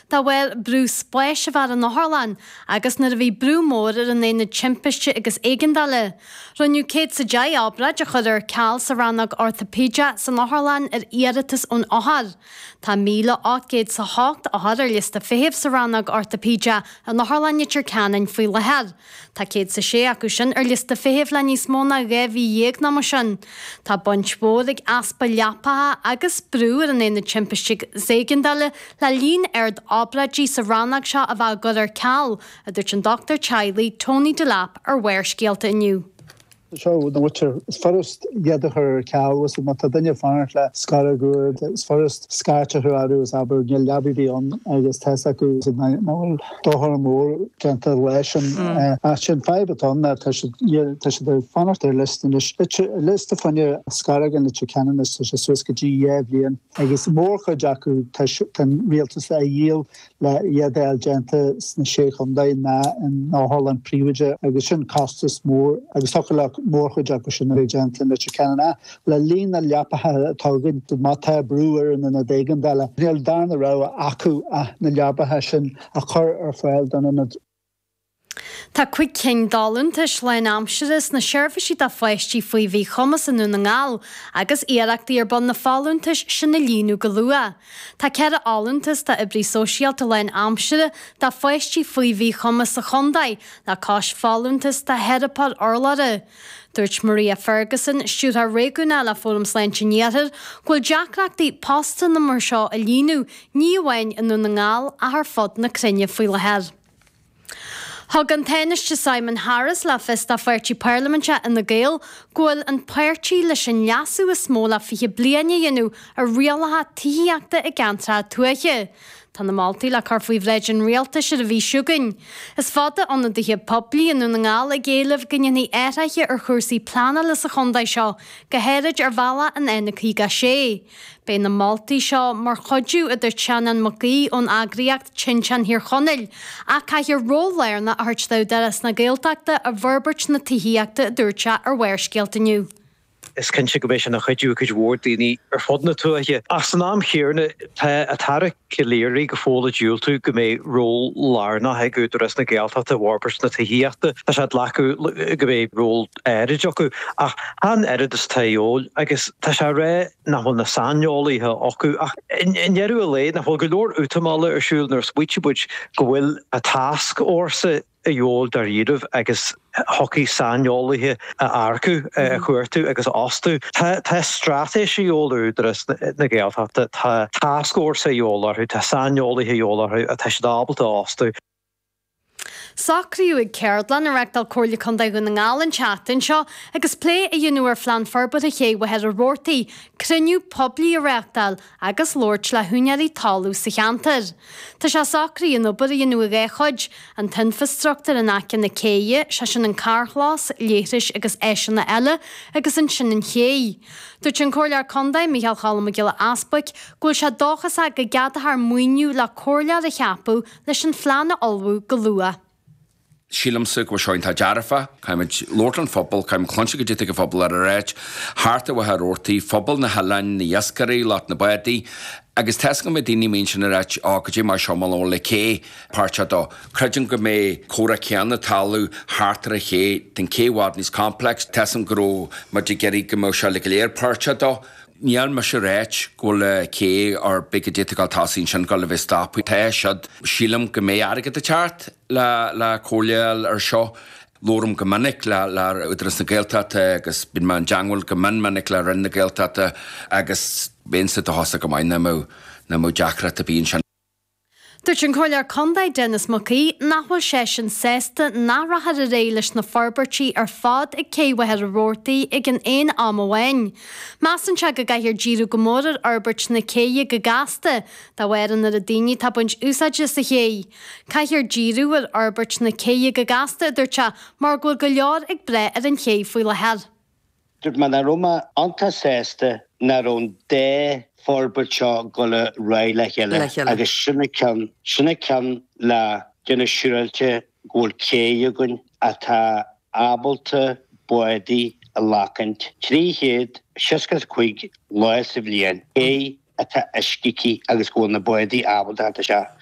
De bharr brú spáis a bhí ar an otharlann agus nuair a bhí brú mór ar an Aonad Timpiste agus Éigeandála, rinneadh céad is a deich obráid a chur ar ceal sa rannóg ortaipéide san otharlann ar iarratas ón othair. Tá míle ocht gcéad is a hocht othar ar liosta feithimh sa rannóg ortaipéide in Otharlann Leitir Ceanainn faoi láthair. Tá céad 's a sé acu sin ar liosta feithimh le níos mó ná dhá mhí dhéag an am sin. Tá baint mhór ag easpa leapacha agus brú ar an aonad timpiste 's éigeandála le líon ard obráidí sa rannóg seo a bheith á gcur ar ceal, a dúirt an dochtúir teaghlaigh Tony Delap ar Bharrscéalta inniu. Seo na bhfuitear. Is furast iad a chur ar ceal, uasal, má tá duine ag fanacht le scairt ghutháin, is furast scairt a chur orthu is abair níl leaba ar bith ann agus tá's acu nach bhfuil dochar mór déanta leis an áit sin. Fadhb atá ann ná tá siad ag fanacht ar liosta anois, liosta fuinneamh scairt in Leitir Ceanainn is tá sé suas go dtí dhá bhliain agus mórchuid acu tá an rialtas le a dhíol. le hiad a fháil déanta sna Sé Chontae nó in otharlann phríobháideach agus sin costas mór agus thiocfadh le mórchuid acu sin a bheith déanta in Leitir Ceanainn ach le líon na leapacha atá acu má tá brú ar an ionad éigeandála níl darna rogha acu ach na leapacha sin a chur ar fáil don ionad. Tá cúig cinn d'fholúntais lánaimseartha sna seirbhísí do pháistí faoi mhíchumas i nDún na nGall agus iarrachtaí ar bun na folúntais sin a líonadh go luath. Tá ceithre fholúntas d'oibrí sóisialta lánaimseartha do pháistí faoi mhíchumas sa chontae, le cois folúntas do theiripeoir urlabhra. Dúirt Maria Ferguson, Stiúrthóir Réigiúnach le Fóram Sláinte an Iarthair, go bhfuil deacrachtaí postanna mar seo a líonadh ní amháin i nDún na nGall ach ar fud na cruinne faoi láthair. Thug an Tánaiste Simon Harris le fios dá pháirtí parlaiminte, Fhine Gael, go bhfuil an páirtí leis an leasú is mó le 20 bliain a dhéanamh ar rialacha tithíochta i gceantracha tuaithe. Tá na moltaí le cur faoi bhráid an Rialtais ar an mhí seo chugainn. Is fada ionadaithe poiblí i nDún na nGall ag éileamh go ndéanfaí athruithe ar chúrsaí pleanála sa chontae seo, go háirid ar bhealach an N56. Beidh na moltaí seo mar chuidiú a dúirt Seanán Mac Aoidh ón eagraíocht Tinteán Thír Chonaill, ach caithfear ról lárnach a thabhairt d'Údarás na Gaeltachta i bhforbairt na tithíochta a dúirt sé ar Bharrscéalta inniu. Is cinnte go mbeidh sin ina chuidiú ag cuid mhór daoine ar fud na tuaithe. Ach san am chéanna tá an tAire Calleary go fóill ag diúltú go mbeidh ról lárnach ag Údarás na Gaeltachta i bhforbairt na tithíochta. Tá sé ag glacadh go mbeidh ról áirid acu ach chan oiread is atá de dhíobháil agus tá sé ag rá nach bhfuil na saineolaithe acu ach i ndeireadh an lae nach bhfuil go leor útamála ar siúl nuair a smaoiníonn muid go bhfuil an tascfhórsa. dhíobháil dáiríribh agus thiocfadh saineolaithe a earcú, a chuartú agus a fhostú. Tá straitéis a dhíobháil ar Údarás na Gaeltachta, tá tascfhórsa a dhíobháil orthu, tá saineolaithe a dhíobháil orthu atá siad ábalta a fhostú. Socraíodh ag ceardlann a reachtáil Comhairle Contae Dhún na nGall an tseachtain seo agus plé á dhéanamh ar Phlean Forbartha Ché Mhachaire Rabhartaigh, cruinniú poiblí a reachtáil agus labhairt le húinéirí talaimh sa cheantar. Tá sé socraithe an obair a dhéanamh i dhá chuid, an t-infreastruchtúr in aice na céidhe, sé sin an carrchlós, leithris agus áiseanna eile, agus ansin an chéidh. Dúirt an Comhairleoir Contae, Micheál Choilm Mac Giolla Easbuig, go bhfuil sé dóchasach go gceadófar maoiniú le comhairleoir a cheapadh leis an phlean a ullmhú go luath. Sílimse go bhfuil seo iontach dearfa. Caithfimid labhairt leis an phobal, caithfimid cluinstin goidé tá an pobal ag ráit, thart ar Mhachaire Rabhartaigh, phobal na hoileáin, na iascairí, lucht na bádaí. Agus tá fhios agam go mbeidh daoine a mbíonn sin ag ráit, oh go dté mé seo, mé labhair le cé, páirt a dó. Creidim go mbeidh comhrá céanna talamh thart ar an ché, den cé i bhfad níos complex, tá fhios agam go raibh muid ag iarraidh go mbeadh seo le go léir páirt a dó. Níl mise ag ráit go bhfuil cé or big a d'fhéadfadh gabháil chun tosaigh ansin gabháil a bheith stoptha. Tá siad, sílim go mbeidh airgead ag teacht. le le comhairle a fháil ar seo. labhraim go minic le le Údarás na Gaeltachta agus bíonn mé i dteangmháil go mion minic le Roinn na Gaeltachta agus bheinnse dóchasach go maith nach mbeadh nach mbeadh deacracht ar bith ansin. Dúirt an Comhairleoir Condae Denis Mac Aoidh nach bhfuil seisean sásta nach rachfar ar aghaidh leis na forbairtí ar fad ag Cé Mhachaire Rabhartaigh ag an aon am amháin. Measann sé go gcaithfear díriú go mór ar fhorbairt na céidhe go gasta de bharr an oiread daoine atá ag baint úsáide as an chéidh. Caithfear díriú ar fhorbairt na céidhe go gasta, a dúirt sé, mar go bhfuil go leor ag brath ar an chéidh faoi láthair. Dúirt mé nach raibh mé iontach sásta nach raibh an dá fhorbairt seo ag gabháil ar aghaidh le chéile agus sin an ceann le déanamh siúráilte go bhfuil céidh againn atá ábalta bádaí a ghlacaint 365 lá sa bhliain, céidh atá uisce aici agus go bhfuil na bádaí ábalta a theacht isteach.